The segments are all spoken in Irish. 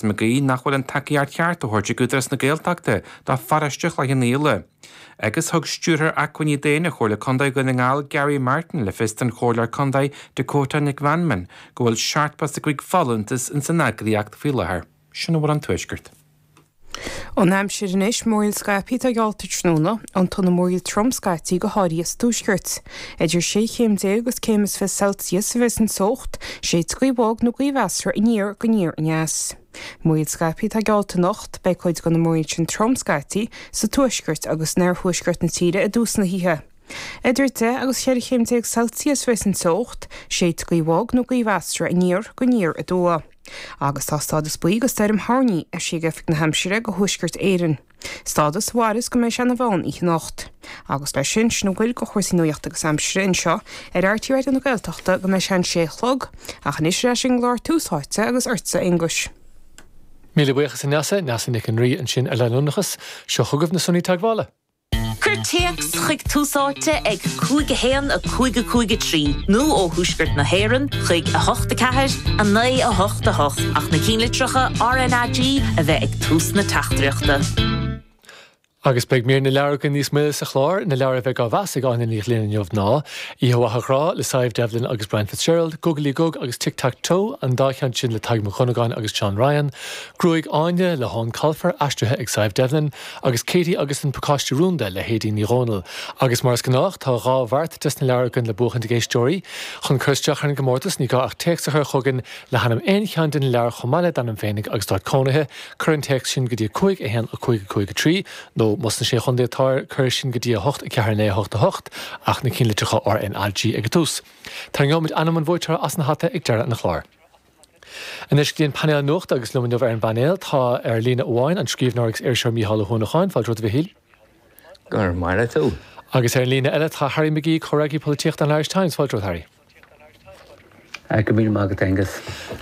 An gcaoi nach bhfuil an tacaíocht cheart á thabhairt ag Údarás na Gaeltachta do pharóiste Chloich Cheann Fhaola. Agus thug Stiúrthóir Acmhainní Daonna Chomhairle Contae Dhún na nGall, Gary Martin, le fios don Chomhairleoir Contae, Dakota Nic Mheanman, go bhfuil seachtó is a cúig folúntas ins an eagraíocht faoi láthair. Sin a bhfuil ón Tuaisceart. An aimsir anois, múraíl scaipthe atá geallta tráthnóna, roinnt de na múraíl trom scaití go háirithe sa Tuaisceart. Idir sé chéim déag agus céim is fiche Celsius a bheas an teocht, séidfidh gaoth bhog nó gaoth mheasartha aniar go aniar aneas. Múraíl scaipthe atá geallta anocht, beidh cuid de na múraíl sin trom scaití sa tuaisceart agus in oirthuaisceart na tíre i dtús na hoíche. Idir deich agus ceithre chéim déag Celsius a bheas an teocht, séidfidh gaoth bhog nó gaoth mheasartha aniar go aniar aduaidh. Agus tá stádas buí do stoirm thoirní eisithe ag Oifig na hAimsire do Thuaisceart Éireann. stádas a mhairfeas go mbeidh sé ina mheán oíche anocht. Agus leis sin, sin a bhfuil de chúrsaí nuachta agus aimsire anseo ar RTÉ Raidió na Gaeltachta go mbeidh sé an sé a chlog, ach anois ar ais ag an gclár Tús Áite agus ortsa, a Aonghuis. Míle buíochas a Neasa, Neasa Nic an Rí ansin ar leanúnachas. Seo chugaibh na Sonraí Teagmhála. Cuir téacs chuig Tús Áite ag 5 1 5 5 3 nó ó Thuaisceart na hÉireann chuig 8 4 9 8 8 ach na cinnlitreacha RNAG a bheith ag tús na teachtaireachta. Agus beidh mír na leabhar againn níos moille sa chlár, na leabhair a bheidh á mheas ag Áine Ní Ghlinn inniu ná, Oíche Mhaith a Ghrá, le Sadhbh Devlin agus Brian Fitzgerald, Gugalaí Gug agus Tic Tac Toe, an dá cheann sin le Tadhg Mac Dhonnagáin agus John Ryan, Gruaig Áine, le hEoin Colfer, aistrithe ag Sadhbh Devlin, agus Katie agus an Pacáiste Rúnda le hAedín Ní Dhomhnaill, agus mar is gnách tá dhá bheart des na leabhair againn le buachaint ag éisteoirí. Chun cur isteach ar an gcomórtas ní gá ach téacs a chur chugainn le hainm aon cheann de na leabhair chomh maith le d'ainm féinig agus d'áit cónaithe, cuir an téacs sin go dtí 5 1 5 5 3 nó, más sna Sé Chontae atáir, cuir é sin go dtí 8 4 9 8 8, ach na cinnlitreacha RNAG ag an tús. Tarraingeoimid ainm an bhuaiteora as an hata ag deireadh an chláir. Anois go dtí an painéal nuachta agus liom inniu ar an bpainéal tá ar líne amháin an scríbhneoir agus iriseoir Mícheál Ó hUanacháin, fáilte romhat a Mhichíl. Go raibh maith agat a. Agus ar an líne eile tá Harry McGee, Comhfhreagraí Polaitíochta an Irish Times, fáilte romhat Harry. Go míle maith agat Aengus.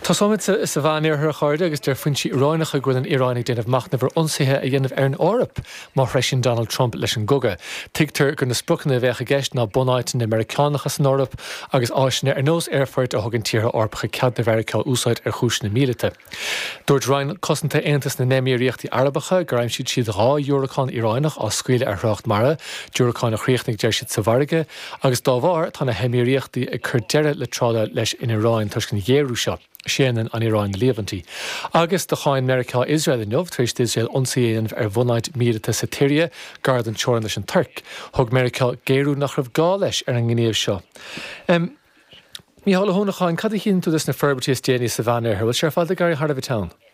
Tosóimid sa Mheánoirthear a chairde agus deir foinsí Iaránacha go bhfuil an Iaráin ag déanamh machnaimh ar ionsaithe a dhéanamh ar an Eoraip Má threisíonn Donald Trump leis an gcogadh, tuigtear gur na spriocanna a bheadh i gceist ná bunáiteanna Meiriceánacha san Eoraip agus áiseanna ar nós aerfoirt a thugann tíortha Eorpacha cead do Mheiriceá a úsáid ar chúiseanna míleata. Dúirt Roinn Cosanta Aontas na nÉimíríochtaí Arabacha gur aimsigh siad dhá dhiúracán Iaránach á scaoileadh ar thrácht mara, diúracáin a chríochnaigh deir siad sa bhfarraige, agus dá bharr tá na hEimíríochtaí ag cur deireadh le trádáil leis an Iaráin toisc an ghéarú seo. Séanann an Iaráin na líomhaintí agus do cháin Meiriceá Iosrael inniu tar éis d'Iosrael ionsaí a dhéanamh ar bhunáit míleata sa tSiria gar don teorainn leis an Tuirc. Thug Meiriceá géarú nach raibh gá leis ar an ngníomh seo. Mícheál Ó hUanacháin, cad a dhéanann tú des na forbairtí is déanaí sa Mheánoirthear? Bhfuil sé ar fad ag éirí thar a bheith teann?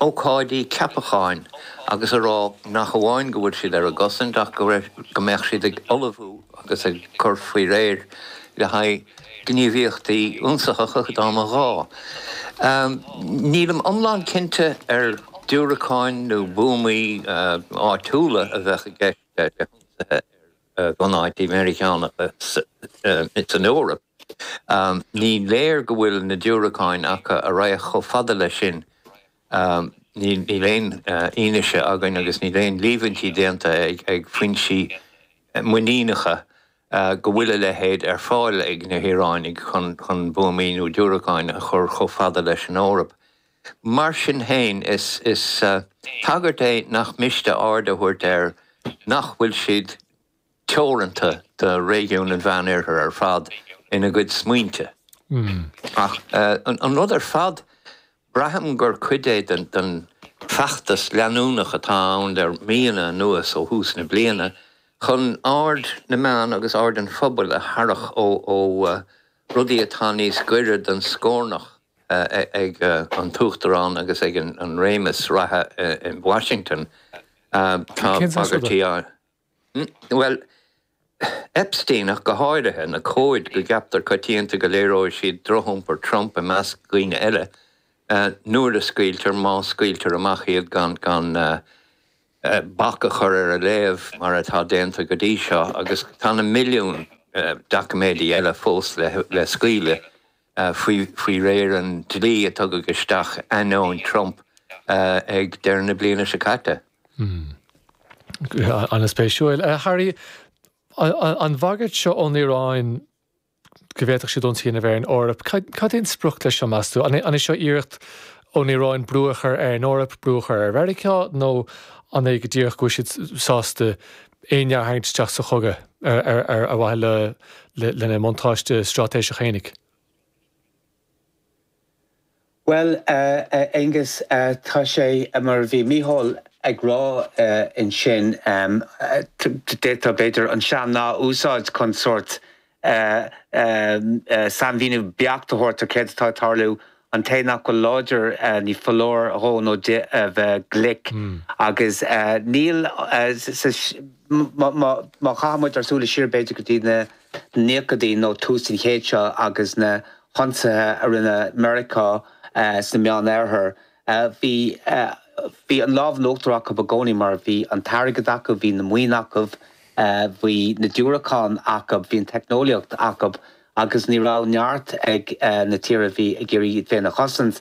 ócáidí ceapacháin agus a rá nach amháin go bhfuil siad ar a gcosaint ach go mbeadh siad ag ullmhú agus ag cur faoi réir le haghaidh gníomhaíochtaí ionsaitheacha dá mba ghá. Nílim iomlán cinnte ar diúracáin nó buamaí áitiúla a bheadh i gceist le hionsaithe ar bhunáití Meiriceánacha san Eoraip. Ní léir go bhfuil na diúracáin acu a raghadh chomh fada leis sin. Níl aon fhianaise againn agus níl aon líomhaintí déanta ag foinsí muiníneacha go bhfuil a leithéid ar fáil ag na hIaránaigh chun buamaí nó diúracáin a chur chomh fada leis an Eoraip. Mar sin féin, is bagairt é nach miste aird a thabhairt air nach bhfuil siad. teoranta do réigiún an Mheánoirthir ar fad ina gcuid smaointe. Ach an rud ar fad, braithim gur cuid é den feachtas leanúnach atá ann le míonna anuas, ó thús na bliana, chun aird na meán agus aird an phobail a tharrach ó rudaí atá níos gaire don scornach ag an tUachtarán agus ag an réimeas reatha i Washington. Tá bagairtí á. bhuel, Epsteinach go háirithe, na comhaid go gceaptar coitianta go léireoidh siad drochiompar Trump i measc daoine eile, nuair a scaoiltear, má scaoiltear amach iad gan bac a chur ar a léamh mar atá déanta go dtí seo, agus tá na milliúin doiciméidí eile fós le scaoileadh. faoi faoi réir an dlí a tugadh isteach ainneoin Trump ag deireadh na bliana seo caite. Hmm. Ana spéisiúil. Eh, Harry, an bhagairt seo ón Iaráin go bhféadfadh siad ionsaí a dhéanamh ar an Eoraip, cad é an sprioc leis seo meas tú? An é seo iarracht ón Iaráin brú a chur ar an Eoraip, brú a chur ar Mheiriceá, nó an é go díreach go bhfuil siad sásta éinne a tharraingt isteach sa chogadh ar mhaithe lena mbuntáiste straitéiseach fhéinig. Bhuel, a Aonghus, tá sé mar a bhí Micheál ag rá ansin, d'fhéadfá, b'fhéidir, an sean-nath a úsáid chun sórt sainmhíniú beacht a thabhairt ar céard atá ag tarlú. An té nach bhfuil láidir ní foláir dhó nó di a bheith glic. Agus níl sa, má chaitheann muid ár súile siar b'fhéidir go dtí na nóchaidí nó tús an chéid seo agus na hionsaithe a rinne Meiriceá sa Meánoirthear, Bhí, bhí an lámh in uachtar acu i gcónaí mar bhí an t-airgead acu, bhí na maoin acu, bhí na diúracáin acu, bhí an teicneolaíocht acu agus ní raibh neart ag na tíortha a bhí ag iarraidh iad féin a chosaint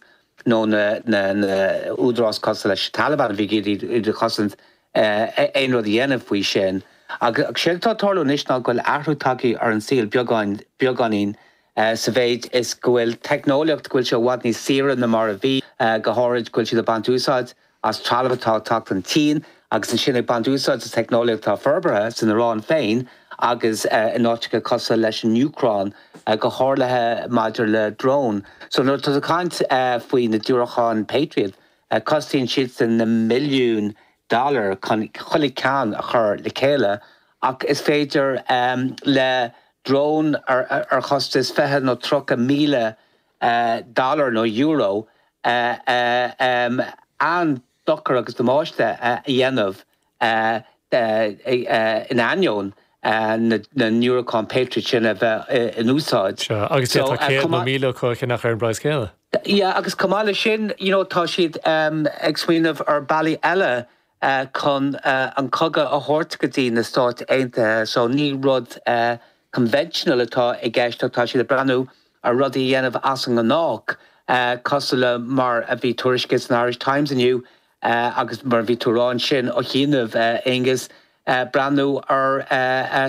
nó na, na, na údaráis cosúil leis an Taliban a bhí ag iarraidh iad a chosaint aon rud a dhéanamh faoi sin. Agus séard atá ag tarlú anois ná go bhfuil athrú tagtha ar an saol beagáinín, beagáinín. sa mhéid is go bhfuil teicneolaíocht, go bhfuil sé i bhfad níos saoire ná mar a bhí, go háirid, go bhfuil siad ag baint úsáid as trealamh atá ag teacht ón tSín agus ansin ag baint úsáid as teicneolaíocht atá forbartha san Iráin féin agus in áiteacha cosúil leis an Úcráin, go háirithe maidir le dróin. So nuair atá tú ag caint faoi na diúracáin Patriot, cosnaíonn siadsan na milliúin dollar chun chuile cheann a chur le chéile ach is féidir le drón ar chostas fiche nó tríocha míle dollar nó euro an-dochar agus damáiste a dhéanamh in ainneoin na ndiúracán Patriot sin a bheith in úsáid. Sea, agus d'fhéadfadh céad nó míle acu a cheannach ar an bpraghas céanna. Yeah, agus chomh maith leis sin, you know, tá siad ag smaoineamh ar bealaí eile chun an cogadh a thabhairt go dtí na Stáit Aontaithe. So ní rud conventional atá i gceist ach tá siad ag breathnú ar rudaí a dhéanamh as an ngnách, cosúil le mar a bhí tuairiscithe san Irish Times inniu, a agus mar a bhí tú rá ansin ó chianaibh, a Aonghuis, breathnú ar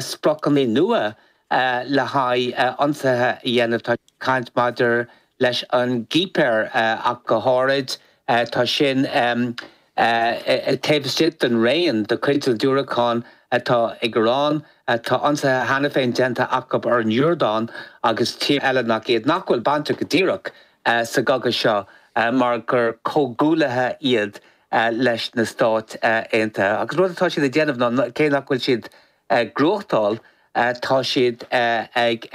spriocanna nua le haghaidh ionsaithe a dhéanamh. Tá caint maidir leis an gCipir ach go háirid. Tá sin taobh istigh den raon de chuid na ndiúracán atá ag Iran. Tá ionsaithe cheana féin déanta acu ar an Iordáin agus tíortha eile nach iad nach bhfuil bainteach go díreach sa gcogadh seo mar gur comhghuaillithe iad leis na Stáit Aontaithe agus an rud atá siad ag déanamh ná cé nach bhfuil siad ag gnóthachtáil tá siad ag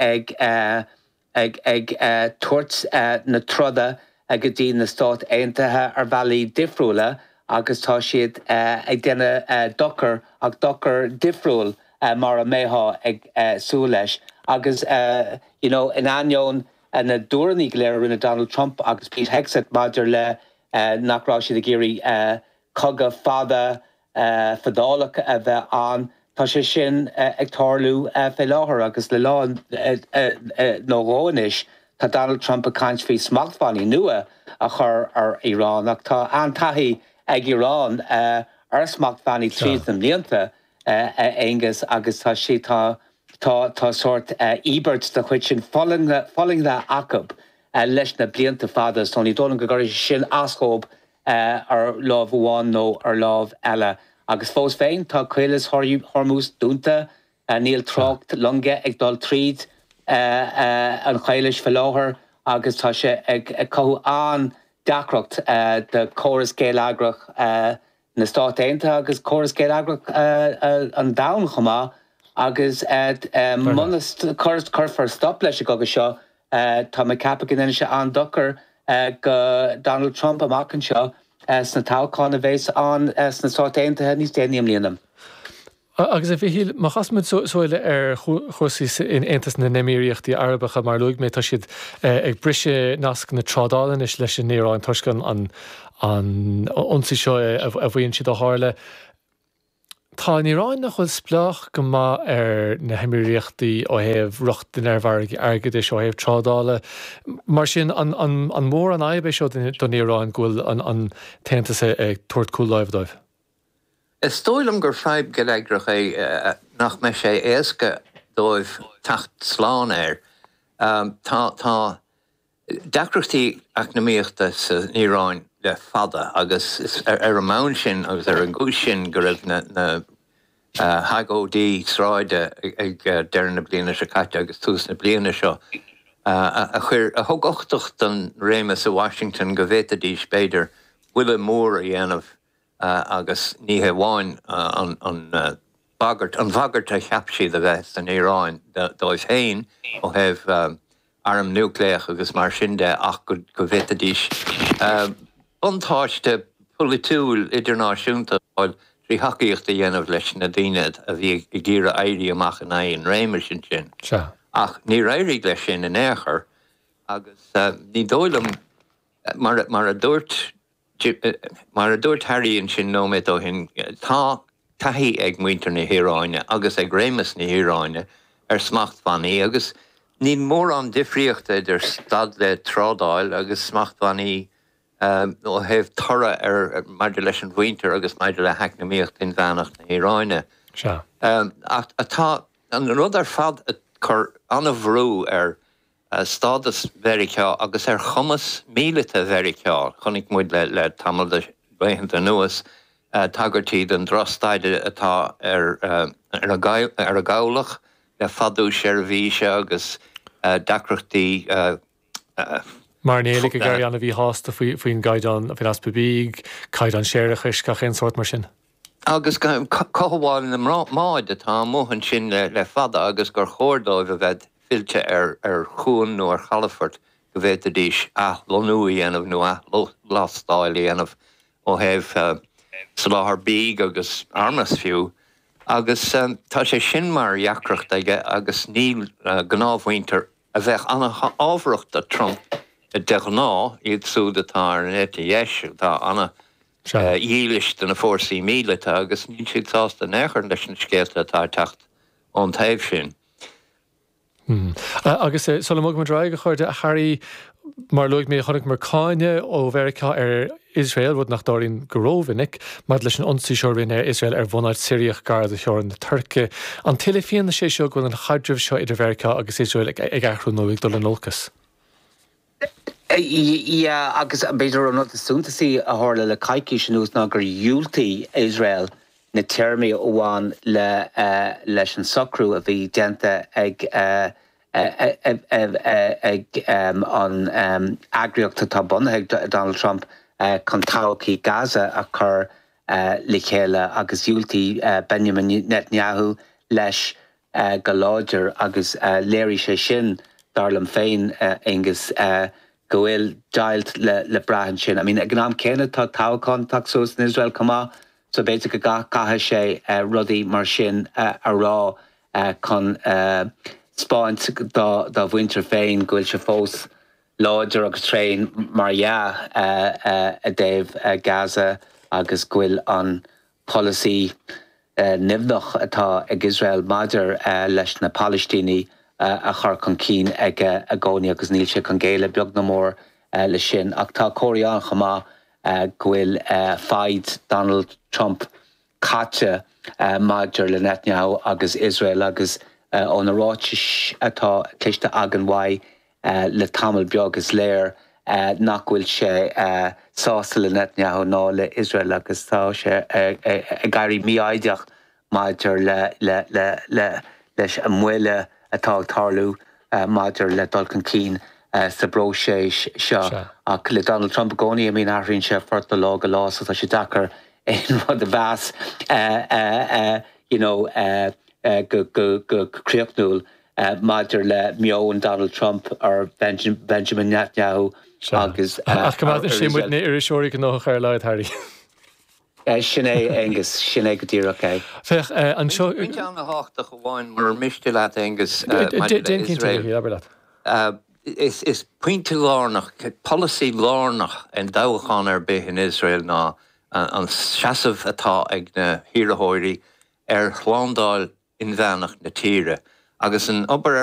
tabhairt na troda go dtí na Stáit Aontaithe ar bhealaí difriúla agus tá siad ag déanamh dochar ach dochar difriúil mar a mbeifeá ag súil leis agus you know in ainneoin na dtuairimí go léir a rinne Donald Trump agus Pete Hegseth maidir le nach raibh siad ag iarraidh cogadh fada fadálach a bheith ann, tá sé sin ag tarlú fé láthair agus le lá nó dhó anois tá Donald Trump ag caint faoi smachtbhannaí nua a chur ar Iran ach tá an-taithí ag Iran ar smachtbhannaí tríd na blianta. a Aonghus, agus tá siad, tá, tá, tá sórt íobairt de chuid sin fulaingthe, fulaingthe acu leis na blianta fada so ní dóigh liom go gcuirfidh sé sin as dóibh ar láimh amháin nó ar láimh eile. Agus fós féin, tá Caolas Hormuz dúnta, níl trácht loinge ag dul tríd an Chaolas faoi láthair agus tá sé ag cothú an-deacracht do chóras geilleagrach na Stáit Aontaithe agus córas geilleagrach an domhain chomh maith agus muna cuirfear stop leis an gcogadh seo tá mé ag ceapadh go ndéanfaidh sé an-dochar do Donald Trump amach anseo sna toghcháin a bhéas ann sna Stáit Aontaithe níos déanaí i mbliana. A, agus a Mhichíl, má chaithimid súil ar chúrsaí in Aontas na nÉimíríochtaí Arabacha, mar a luaigh mé, tá siad ag briseadh nasc na trádála anois leis an Iaráin toisc an ionsaí seo a mhaíonn siad a tharla. Tá an Iaráin, nach bhfuil, spleách go maith ar na hÉimíríochtaí ó thaobh rochtain ar mhargaí airgeadais, ó thaobh trádála. Mar sin, an mór an fhadhb é seo don Iaráin go bhfuil an tAontas ag tabhairt cúl láimhe dóibh? Is dóigh liom gur fadhb gheilleagrach é nach mbeidh sé éasca dóibh teacht slán air. Tá, tá deacrachtaí eacnamaíochta san Iaráin le fada agus is ar an mbonn sin agus ar an gcúis sin go raibh na hagóidí sráide ag deireadh na bliana seo caite agus tús na bliana seo a chuir, a thug uchtach don réimeas i Washington go bhféadfaidís, b'fhéidir, buille mór a dhéanamh. agus ní hé amháin an bhagairt, an bhagairt a cheap siad a bheith san Iaráin dóibh féin ó thaobh airm núicléach agus mar sin de ach go bhféadfaidís buntáiste polaitiúil idirnáisiúnta a fháil trí thacaíocht a dhéanamh leis na daoine a bhí ag iarraidh éirí amach in aghaidh an réimis ansin. Ach níor éirigh leis sin in aon chor agus ní dóigh liom, mar a dúirt. Mar a dúirt Harry ansin nóiméad ó shin, tá taithí ag muintir na hIaráine agus ag réimeas na hIaráine ar smachtbhannaí agus níl mórán difríochta idir stad le trádáil agus smachtbhannaí ó thaobh toradh ar maidir leis an mhuintir agus maidir le heacnamaíocht inmheánach na hIaráine. Ach tá an rud ar fad ag cur an-bhrú ar ar stádas Mheiriceá agus ar chumas míleata Mheiriceá. Chonaic muid le tamall de laethanta anuas tagairtí don drochstaid atá ar an gcabhlach le fadú seirbhíse agus deacrachtaí. Mairnéalaigh ag éirí an-mhíshásta faoin gcaighdeán, faoin easpa bídh, caighdeán séarachais, gach aon sórt mar sin. agus cothabháil na mbád atá amuigh ansin le fada agus gur chóir dóibh a bheith fillte ar chuan nó ar chalafort go bhféadfadh siad athlonnú a dhéanamh nó athlastáil a dhéanamh ó thaobh soláthair bídh agus armas fiú agus tá sé sin mar dheacracht aige agus níl gnáthmhuintir a bheadh an-fhabhrach do Trump de ghnáth iad súd atá ar an eite dheis atá an- dhílis do na fórsaí míleata agus níl siad sásta in aon chor leis na scéalta atá ag teacht ón taobh sin. Agus sula mbogfaidh muid ar aghaidh, ón gCurrach, a Harry, mar a luaigh mé, chonaiceamar cáineadh ó Mheiriceá ar Iosrael, rud nach dtarlaíonn go rómhinic, maidir leis an ionsaí seo a rinne Iosrael ar bhunáit Shiriach gar do theorainn na Tuirce. An tuilleadh fianaise é seo go bhfuil an chaidreamh seo idir Mheiriceá agus Iosrael ag athrú nó ag dul in olcas? Yeah, agus b'fhéidir an rud is suntasaí a tharla le coicís anuas ná gur dhiúltaigh Iosrael na téarmaí a bhain leis an socrú a bhí déanta ag an eagraíocht atá bunaithe ag Donald Trump chun todhchaí Gaza a chur le chéile agus dhiúltaigh Benjamin Netanyahu leis. go láidir agus léirigh sé sin, dar liom féin, Aonghus, go bhfuil deighilt le brath ansin. I mean, ag an am céanna, tá toghchán ag teacht suas in Iosrael chomh maith so b'fhéidir go gcaithfidh sé rudaí mar sin a rá chun 'speáint dá mhuintir féin go bhfuil sé fós láidir agus tréan, mar dhea, i dtaobh Gaza agus go bhfuil an. polasaí nimhneach atá ag Iosrael maidir leis na Palaistínigh a chur chun cinn aige i gcónaí agus níl sé chun géilleadh beag ná mór leis sin. Ach tá comharthaí ann chomh maith go bhfuil foighid Donald Trump caite maidir le Netanyahu agus Iosrael agus ó na ráitis atá cloiste againn uaidh le tamall beag, is léir nach bhfuil sé sásta le Netanyahu ná le Iosrael agus tá sé ag éirí mífhoighdeach maidir leis an moill atá ag tarlú maidir le dul chun cinn sa bpróiseas seo. Ach le Donald Trump i gcónaí, I mean, athraíonn sé a phort ó lá go lá so tá sé deacair aon rud a mheas, you know, go críochnúil. maidir le meon Donald Trump ar Benjamin Netanyahu agus ar a riail. Sin é, Aonghus, sin é go díreach é. Féach anseo. Bain ceann tábhachtach amháin murar miste leat, Aonghus, maidir le Iosrael. Is pointe lárnach, polasaí lárnach i dtoghchán ar bith in Iosrael ná an seasamh atá ag na hiarrthóirí ar shlándáil inmheánach na tíre agus an obair ar